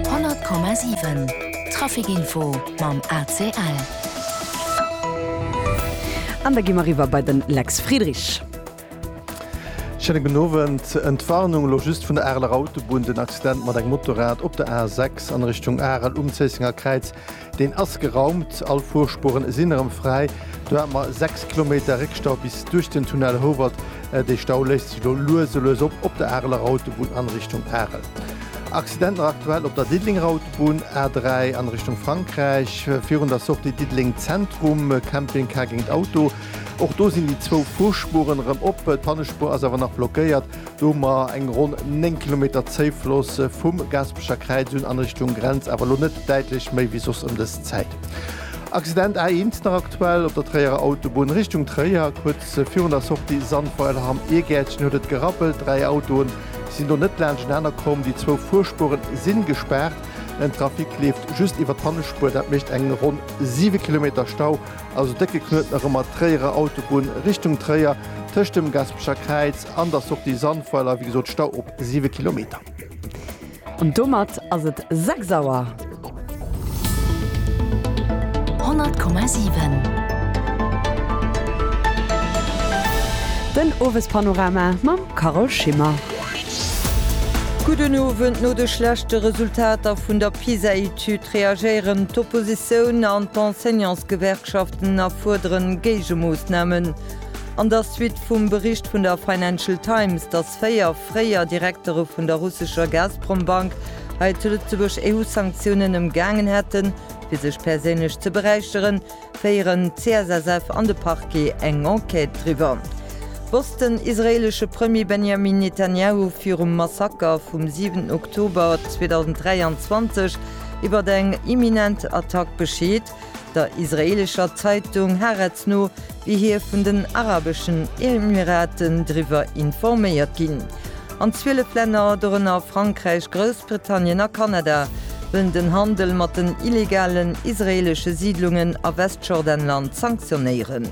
100,7 Trafic Info mam ACL. An da gi mer eriwwer bei de Lex Friedrich. Schéine gudden Owend. Entwarnung elo just vun der Areler Autobunn, Den Accident mat engem Motorrad op der A6 an Richtung Arel um Zéissenger Kräiz Deen ass geraumt, all Fuerspuren sinn erëm fräi. Do hat mer 6 Kilometer Réckstau bis duerch den Tunnel Howald. Dee Stau léist sech elo lues a lues op, op der Areler Autobunn an Richtung Arel. Accidenter aktuell op der Diddelenger Autobunn, A3 an Richtung Frankräich, virun der Sortie Diddeleng Zentrum, Camping Car géint Auto. Och do sinn déi zwou Fuerspuren erëm op, d'Pannespur ass awer nach blockéiert. Do hu mer eng ronn 9 Kilometer Zéifloss vum Gaspecher Kräiz un an Richtung Grenz, awer elo net däitlech méi wéi soss ëm dës Zäit. Accident A1 nach aktuell op der Tréierer Autobunn Richtung Tréier. Kuerz virun der Sortie Sandweiler Ham Iergäertchen huet et gerappelt. Dräi Autoe sinn do net laanscht enaner komm. Déi zwou Fuerspuere si gespaart. Den Trafic leeft just iwwer d'Hannespuer. Dat mécht eng ronn 7 Kilometer Stau Also décke Knuet nach ëmmer d'Tréierer Autobunn Richtung Tréier, tëscht dem Gaspecher Kräiz an der Sortie Sandweiler, wéi gesot, Stau op 7 Kilometer. An domat ass et 6 Auer. 100,7 Den Owespanorama mam Carole Schimmer. Gudden Owend, No de schlechte Resultater vun der PISA-Etüd, D'Süd reagéieren, d'Oppositioun an d'Enseignantsgewerkschaften a fuerderen Géigemoossnamen. An der Suite vum Bericht vun der Financial Times, datt véier fréier Direktere vun der russescher Gazprom-Bank hei zu Lëtzebuerg EU-Sanktiounen ëmgaangen hätten, fir sech perséinlech ze beräicheren, Féieren d'CSSF an de Parquet eng Enquête driwwer? Wosst den israeelesche Premier Benjamin Netanjahu virum Massaker vum 7 Oktober 2023 iwwert eng imminent Attack Bescheed? Der israeelescher Zeitung Haaretz no wier hie vun den Arabeschen Emiraten driwwer informéiert ginn. An 12 Länner, dorënner Frankräich, Groussbritannien a Kanada, wëllen den Handel mat den illegalen israeelesche Siidlungen a Westjordanland sanktionéieren.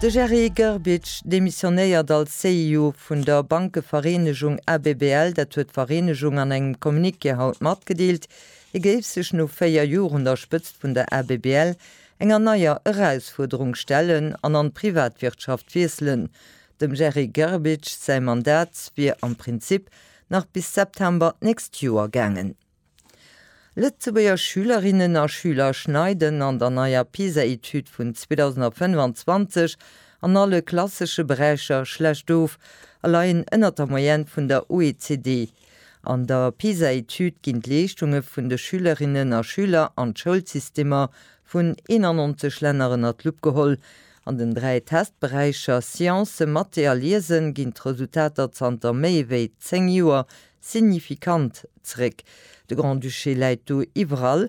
De Jerry Grbic demissionéiert als CEO vun der Bankevereenegung ABBL, dat huet d'Vereenegung an engem Communiqué haut matgedeelt. Hie géif sech no 4 Joer un der Spëtzt vun der ABBL enger neier Erausfuerderung stellen an an d'Privatwirtschaft wiesselen. Dem Jerry Grbić säi Mandat wier am Prinzip nach bis September d'nächst Joer gaangen. Lëtzebuerger Schülerinnen a Schüler schneiden an der neier PISA-Etüd vun 2025 an alle klassesche Beräicher schlecht of a leien ënnert der Moyenne vun der OECD, An der PISA-Etüd ginn d'Leeschtunge vun de Schülerinnen a Schüler an d'Schoulsystemer vun 91 Länner ënner d'Lupp geholl. An den dräi Testberäicher Science, Mathé a Liesen ginn d'Resultater zanter méi wéi zéng Joer signifikant zeréck. De Grand-Duché läit do iwwerall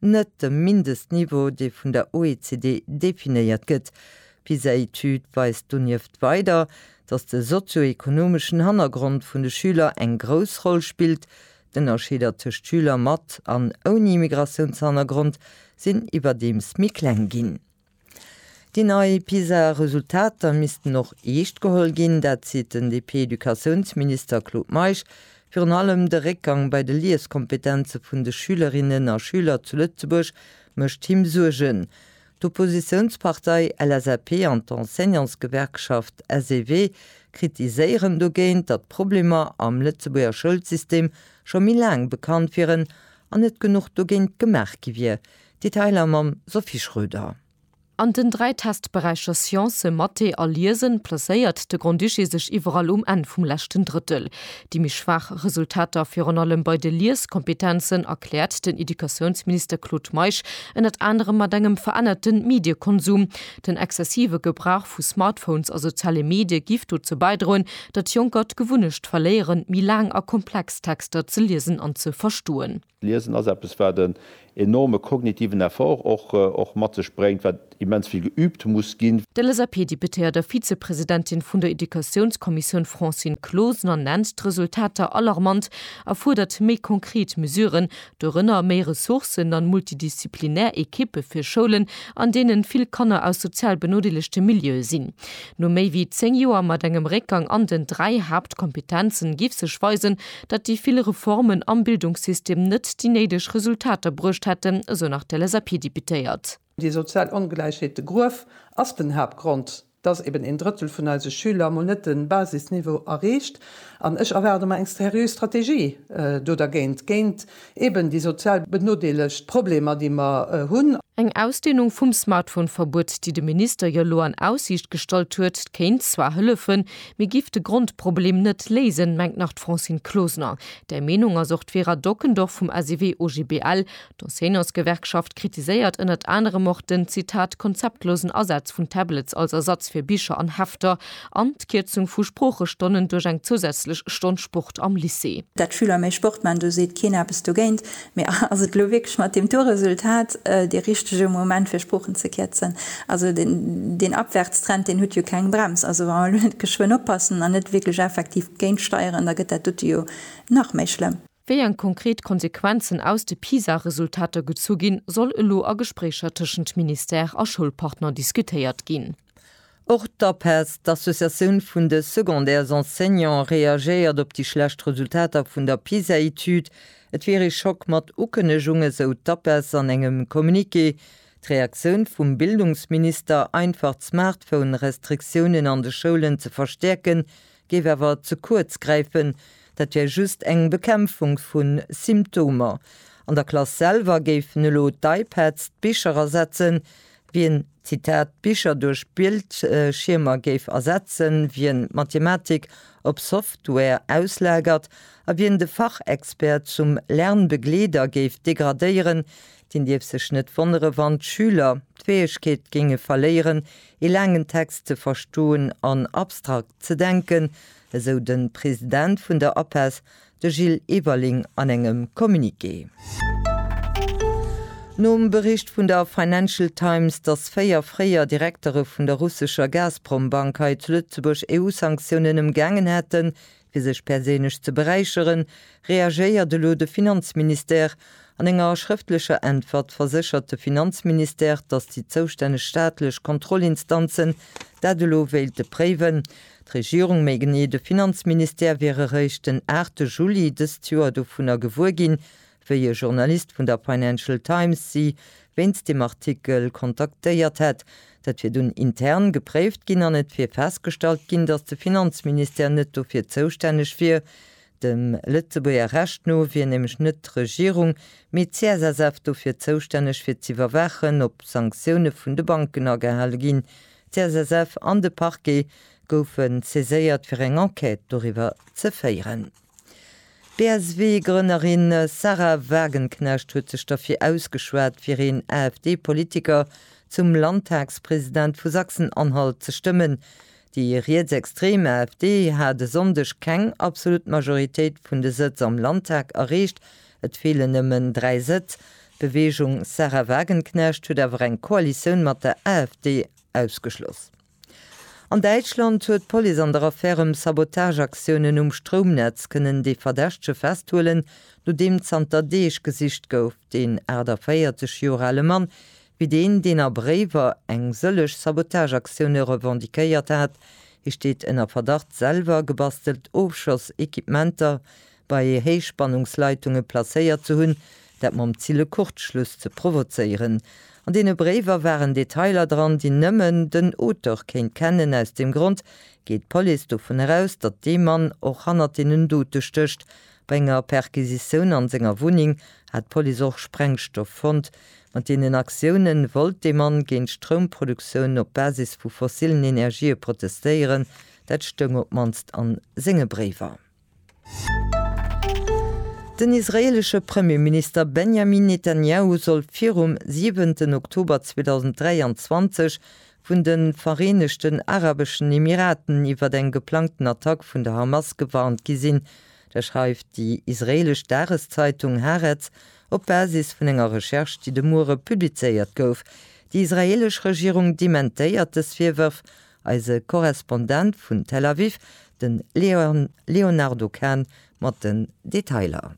net dem Mindestniveau, dee vun der OECD definéiert gëtt. D'PISA-Etüd weist donieft weider, datt de sozio-ekonomeschen Hannergrond vun de Schüler eng grouss Roll spillt. D'Ënnerscheeder tëscht Schüler mat an ouni Immigratiounshannergrond sinn iwwerdeems méi kleng ginn. Déi nei PISA-Resultater missten och eescht geholl ginn. Dat seet den DP-Educatiounsminister Claude Meisch. Virun allem de Réckgang bei de Lieskompetenze vun de Schülerinnen a Schüler zu Lëtzebuerg mécht him Suergen. D'Oppositiounspartei LSAP an d'Enseignantsgewerkschaft SEW kritiséieren dogéint, datt d'Problemer am Lëtzebuerger Schoulsystem scho méi laang bekannt wieren an net genuch dogéint gemaach gi wier, Detailer mam Sophie Schröder. An den dräi Testberäicher Science, Mathé a Liesen placéiert de Grand-Duché sech iwwerall um Enn vum leschten Drëttel. Déi méi schwaach Resultater virun allem bei de Lieskompetenzen erkläert den Educatiounsminister Claude Meisch ënnert anerem mat engem verännerte Mediekonsum. Den exzessive Gebrauch vu Smartphones a soziale Medie giff dozou bäidroen, datt Jonker d'Gewunnecht verléieren, méi laang a komplex Texter ze liesen an ze verstoen. Liesen ass eppes, wat en enorme kognitiven Effort och mat sech bréngt, wat immens vill geübt muss ginn. D'LSAP-Deputéiert a Vizepresidentin vun der Educatiounskommissioun Francine Closener nennt d'Resultater alarmant a fuerdert méi konkret Mesuren, dorënner méi Ressourcen an multidisziplinär Ekippe fir Schoulen, an deenen vill Kanner aus sozial benodeelegte Milieue sinn. No méi wéi 10 Joer mat engem Réckgang an den 3 Haaptkompetenzen giff sech weisen, datt déi vill Reformen am Bildungssystem net déi néideg Resultater bruecht hätten, esou nach d'LSAP-Deputéiert. Déi sozial Ongläichheet, de Gruef, ass den Haaptgrond, datt eben een Drëttel vun eise Schüler mol net de Basisniveau erreecht. An ech erwaarde mer eng seriö Strategie do dergéint, géint Eben déi sozial benodeelegt Problemer, déi mer hunn. Eng Ausdehnung vum Smartphone-Verbuet, déi de Minister jo elo an Aussiicht gestallt huet, kéint zwar hëllefen, mee giff de Grondproblem net léisen, mengt nach d'Francine Closener. Där Meenung ass och d'Vera Dockendorf vum SEW-OGBL. D'Enseignantsgewerkschaft kritiséiert ënnert anerem och den, Zitat, konzeptlosen Asaz vun Tablets als Ersatz fir Bicher an Hefter. An d'Kierzung vu Sproochestonnen duerch eng zousätzlech Stonn Sport am Lycée. Dat d'Schüler méi Sport man, do seet keen eppes dogéint. Mee ass et elo wierklech mat deem Tourresultat dee richtege Moment fir Sproochen ze kierzen? Also deen Abwärtstrend deen huet jo keng Brems. Also wa mer elo net geschwënn oppassen an net wierklech effektiv géintsteieren, da gëtt dat dote jo nach méi schlëmm. Wéi eng konkret Konsequenzen aus de PISA-Resultater gezu ginn, soll elo a Gespréicher tëschent Ministère a Schoulpartner diskutéiert ginn. Och d'APES, d'Associatioun vun de Secondaires Enseignants, reagéiert op déi schlecht Resultater vun der PISA-Etüd. Et wier ee Schock mat Ukënnegung, esou d'APES an engem Communiqué. D'Reaktioun vum Bildungsminister, einfach d'Smartphone-Restriktiounen an de Schoulen ze verstäerken, géif awer ze kuerz gräifen, dat wär just eng Bekämpfung vu Symptomer. An der Klass selwer géifen elo d'iPads d'Bicher ersetzen. Wien, Zitat, d'Bicher duerch Bildschiermer géif ersetzen, wien d'Mathematik op Software auslagert a wien de Fachexpert zum Lernbegleeder géif degradéieren, deen dierf sech net wonnere wann d'Schüler d'Fäegkeet géinge verléieren, ee laangen Text ze verstoen an abstrakt ze denken, esou de President vun der APESS, de Gilles Everling an engem Communiqué. Nom Bericht vun der Financial Times, datt véier fréier Direktere vun der russescher Gazprom-Bank hei zu Lëtzebuerg EU-Sanktiounen ëmgaangen hätten, Fir sech perséinlech ze beräicheren, reagéiert elo de Finanzministère. An enger schrëftlecher Äntwert verséchert de Finanzministère, datt déi zoustänneg staatlech Kontrollinstanzen dat elo wéilte préiwen. D'Regierung, méi genee de Finanzministère, wier eréischt den 8 Juli dëst Joer dovunner gewuer ginn, Wéi e Journalist vun der Financial Times si wéinst deem Artikel kontaktéiert hätt. Dat wier dunn intern gepréift ginn an et wier festgestallt ginn, datt de Finanzministère net dofir zoustänneg wier. Dem Lëtzebuerger Recht no wier nämlech net d'Regierung, mee d'CSSF dofir zoustänneg fir z'iwwerwaachen, ob Sanktioune vun de Banken agehale ginn. D'CSSF an de Parquet goufe saiséiert fir eng Enquête doriwwer ze féieren. D'BSW-Grënnerin Sahra Wagenknecht huet sech derfir ausgeschwat, fir een AfD-Politiker zum Landtagspresident vu Sachsen-Anhalt ze stëmmen. Déi rietsextrem AfD hat e Sonndeg keng absolut Majoritéit vun de Sëtz am Landtag erreecht, et feelen nëmmen dräi Sëtz. D'Beweegung Sahra Wagenknecht huet awer eng Koalitioun mat der AfD ausgeschloss. An Däitschland huet d'Police an der Affär ëm Sabotageaktiounen um Stroumnetz kënnen de Verdächtege festhuelen, nodeem zanter Deeg gesicht gouf. Deen 48 Joer ale Mann wier deen, deen a Bréiwer eng sëllech Sabotageaktioune revendiquéiert hat. Hie steet ënner Verdacht, selwer gebastelt Ofschoss-Equipementer bei Héichspannungsleitunge placéiert ze hunn, dat mam Zil e Kurzschluss ze provozéieren. An deene Bréiwer waren Detailer dran, déi nëmmen den Auteur kéint kennen. Aus deem Grond geet d'Police dovun eraus, datt dee Mann och hannert deenen Dote stécht. Bei enger Perquisitioun an senger Wunneng hat d'Police och Sprengstoff fonnt. Mat deenen Aktioune wollt dee Mann géint d'Stroumproduktioun op Basis vu fossillen Energië protestéieren, dat stoung op d'mannst a senge Bréiwer. Den israeelesche Premierminister Benjamin Netanjahu soll virum siwenten Oktober 2023 vun de Vereenegten Arabeschen Emiraten iwwer eng geplangten Attack vun der Hamas gewarnt gi sinn. Dat schreift déi israeelesch Dageszeitung Haaretz op Basis vun enger Recherche, déi de Muere publizéiert gouf. Déi israeelesch Regierung dementéiert dës Virwërf Eise Korrespondent vun Tel Aviv, de Léonardo Kahn mat den Detailer.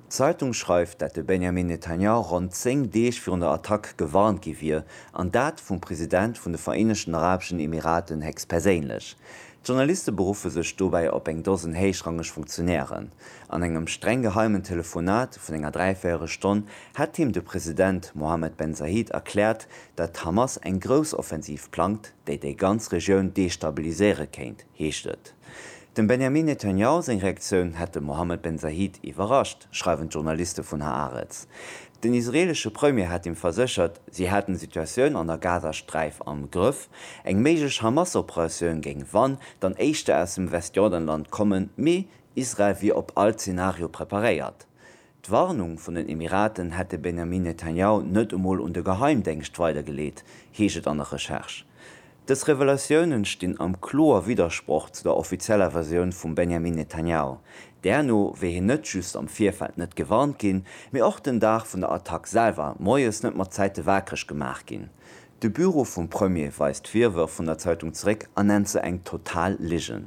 D'Zeitung schreift, dat de Benjamin Netanyahu ronn 10 Deeg virun der Attack gewarnt gi wier, an dat vum President vun de Vereenegten Arabeschen Emiraten héchstperséinlech. D'Journaliste beruffe sech dobäi op eng Dosen héichrangeg Funktionären. An engem streng geheimen Telefonat vun enger Dräivéierelstonn hätt him de President Mohammed Ben Zayed erkläert, datt d'Hamas eng Groussoffensiv plangt, déi déi ganz Regioun destabiliséiere kéint, heescht et. Dem Benjamin Netanjahu seng Reaktioun hätt de Mohammed Ben Zayed iwwerrascht, schreiwen d'Journaliste vun Haaretz. Den israeelesche Premier hat him verséchert, si hätten d'Situatioun an der Gazasträif am Grëff. Eng méiglech Hamas-Operatioun géing wann dann éischter aus dem Westjordanland kommen, mee Israel wier op all Zenario preparéiert. D'Warnung vun den Emiraten hätt de Benjamin Netanjahu net emol un de Geheimdéngscht weidergeleet, heescht et an der Recherche. Dës Revelatiounen stinn am kloer Widdersproch zu der offizieller Versioun vum Benjamin Netanjahu. Därno wier hien net just am Virfeld net gewarnt ginn, mee och den Dag vun der Attack selwer moies net mat Zäite waakreg gemaach ginn. De Büro vum Premier weist d'Virwërf vun der Zeitung zeréck an nennt se eng total Ligen.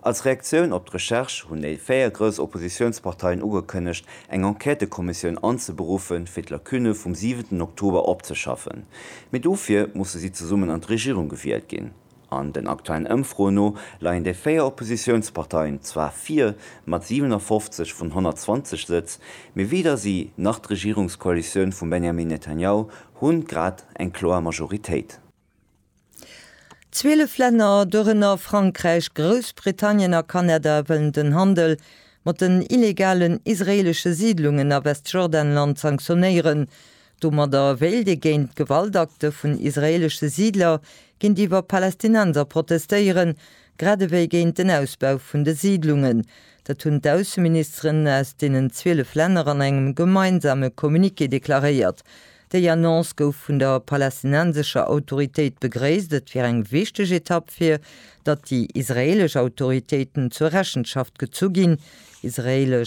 Als Reaktioun op d'Recherche hunn déi véier grouss Oppositiounsparteien ugekënnegt, eng Enquêtëkommissioun anzeberuffen, fir d'Lacunne vum siwenten Oktober opzeschaffen. Mee dofir musse si zesummen an d'Regierung gewielt ginn. An den aktuellen Ëmfroen no leien déi véier Oppositiounsparteien zwar vir, mat 57 vun 120 Sëtz, mee weder si nach d'Regierungskoalitioun vum Benjamin Netanyahu hunn grad eng kloer Majoritéit. Zwielef Länner, dorënner Frankräich, Groussbritannien a Kanada, wëllen den Handel mat den illegalen israeelesche Siidlungen a Westjordanland sanktionéieren. Domadder wéilt ee géint d'Gewaltakte vun israeelesche Siidler géintiwwer Palästinenser protestéieren, grad ewéi géint den Ausbau vun de Siidlungen. Dat hunn d'Ausseministeren aus deenen zwielef Länner an engem gemeinsame Communiqué deklaréiert. Déi Annonce gouf vun der palästinensescher Autoritéit begréisst. Et wier eng wichteg Etapp fir datt déi israeelesch Autoritéiten zur Rechenschaft gezu ginn. Israel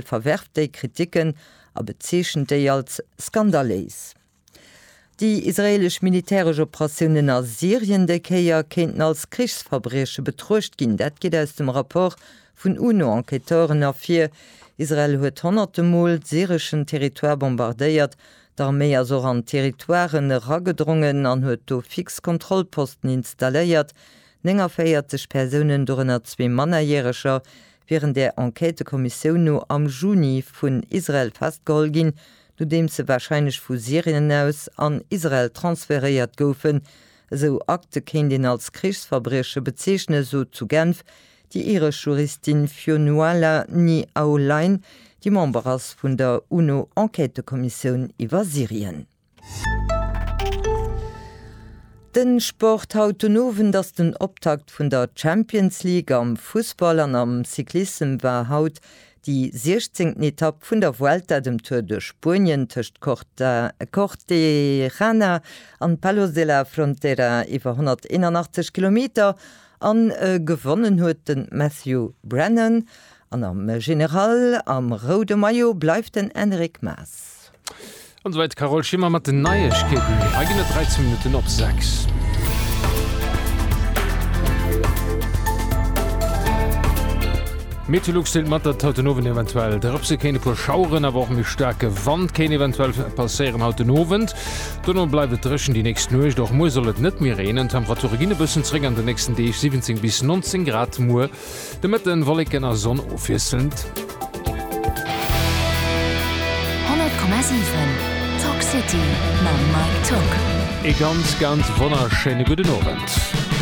verwerft déi Kriticken a bezeechent déi als skandaléis. Déi israeelesch militäresch Operatiounen a Syrien déi Kéier kéinten als Krichsverbrieche betruecht ginn. Dat geet aus dem Rapport Vun UNO-Enquêteuren ervir, Israel huet honnerte Mol syreschen Territoire bombardéiert, d'Arméi ass och an Territoiren eragedrongen an huet do fix Kontrollposten installéiert, 49 Persounen, dorënner zwee Mannerjäreger, wieren där Enquêtekommissioun no am Juni vun Israel festgeholl ginn, nodeems se warscheinlech vu Syrien aus an Israel transferéiert goufen. Esou Akte kéint een als Krichsverbrieche bezeechnen, sot zu Genf Déi iresch Juristin Fionnuala Ni Aulain, déi Member ass vun der UNO-Enquêtëkommissioun iwwer Syrien. De Sport, Haut den Owend ass den Optakt vun der Champions League am Fussball an am Cyclissem war haut déi siechzéngten Etapp vun der Vuelta, dem Tour de Spuenien, tëscht Cortejarena an Palos de la Frontera iwwer 181 Kilometer A gewonnen huet de Matthew Brennan an am General am roude Maillot bleift den Enric Maas. An esouwäit d'Carole Schimmer mat den Neiegkeeten. Hei ginn et 13 Minutten op 6. D'Meteolux deelt mat, datt haut den Owend eventuell drëpse kéint, e puer Schaueren, awer och méi staarke Wand kéint eventuell passéieren haut den Owend. Dono bleift et dréchen déi nächst Nuecht. Och muer soll et net méi reenen. D'Temperature ginn e bëssen zeréck an den nächsten Deeg, 17 bis 19 Grad. Muer de Mëtten Wolleken a Sonn ofwiesselnd. Ee ganz ganz wonnerschéine gudden Owend.